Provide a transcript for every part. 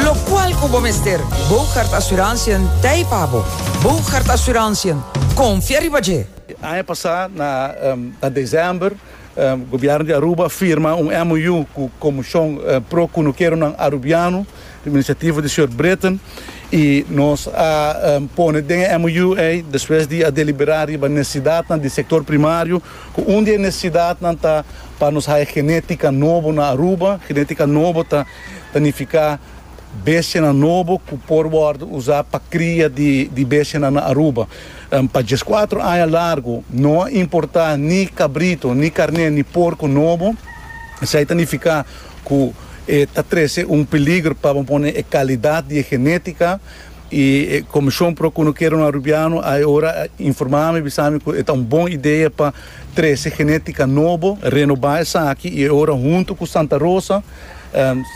Locual cu bo mester. Boogaard Assurantiën t'ei pa bo. Boogaard Assurantiën, confia riba dje! Aña pasá na desèmber, Gobièrnu di Aruba a firma un MOU ku Komushon pro Kunukeronan Arubiano, riba inisiativo di señor Britton, i nos a pone den e MOU ei, despues di a deliberá riba necesidadnan di sektor primario, ku un di e necesidadnan ta pa nos haya genétika nobo na Aruba. Genétika nobo ta Ta nifiká bestianan nobo ku por wòrdu usá pa kria di bestianan na Aruba. Pa dies kuater aña largu no a importá ni kabritu, ni karné, ni porku nobo. Esei ta nifiká ku e ta trese un peligro pa bo pone e kalidat di e genétika. I e Komishon Pro Konokeron Arubiano a e ora a informá mi, a bisa mi ku e ta un bon idea pa trese genétika nobo, renobá esaki i e ora huntu ku Santa Rosa,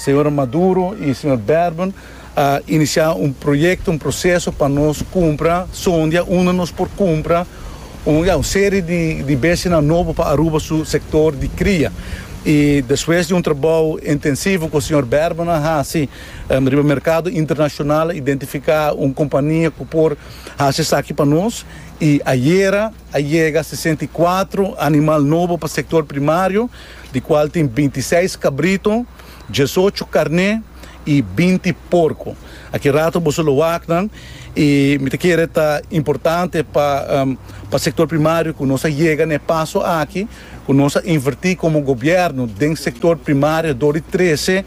Señora Maduro y Señor Berben a inicia un proyecto, un proceso pa nos cumpra zondia unda nos por cumpra un ya un serie di di bestianan nobo pa Aruba su sector di cria. Y despues di un trabao intensivo cu Señor Berben a haci riba mercado internacional a identifica un compania cu por haci esaki pa nos y ayera a yega sesenta y kuatro animal nobo pa sector primario. di kual tin binti seis kabrito, diesocho karné i binti porko. Aki rato boso lo wak nan i mi ta kere ta importante pa pa sektor primario ku nos a yega na e paso aki ku nos a invertí komo gobièrnu den sektor primario dor di trese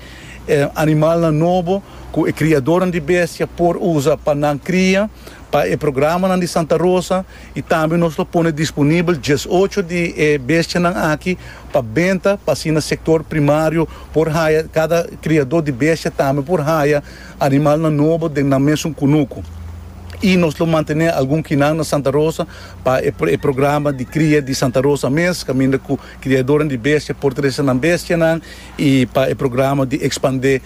animalnan nobo ku e kriadornan di bestia por usa pa nan kria pa e programanan di Santa Rosa. I tambe nos lo pone disponibel dies ocho di e bestianan aki pa benta pa asina sektor primario por haya, kada kriadó di bestia tambe por haya animalnan nobo den nan mesun kunuku. I nos lo mantené algun kinan na Santa Rosa pa e programa di kria di Santa Rosa mes, kaminda ku kriadónan di bestia por trese nan bestianan i pa e programa di ekspandé.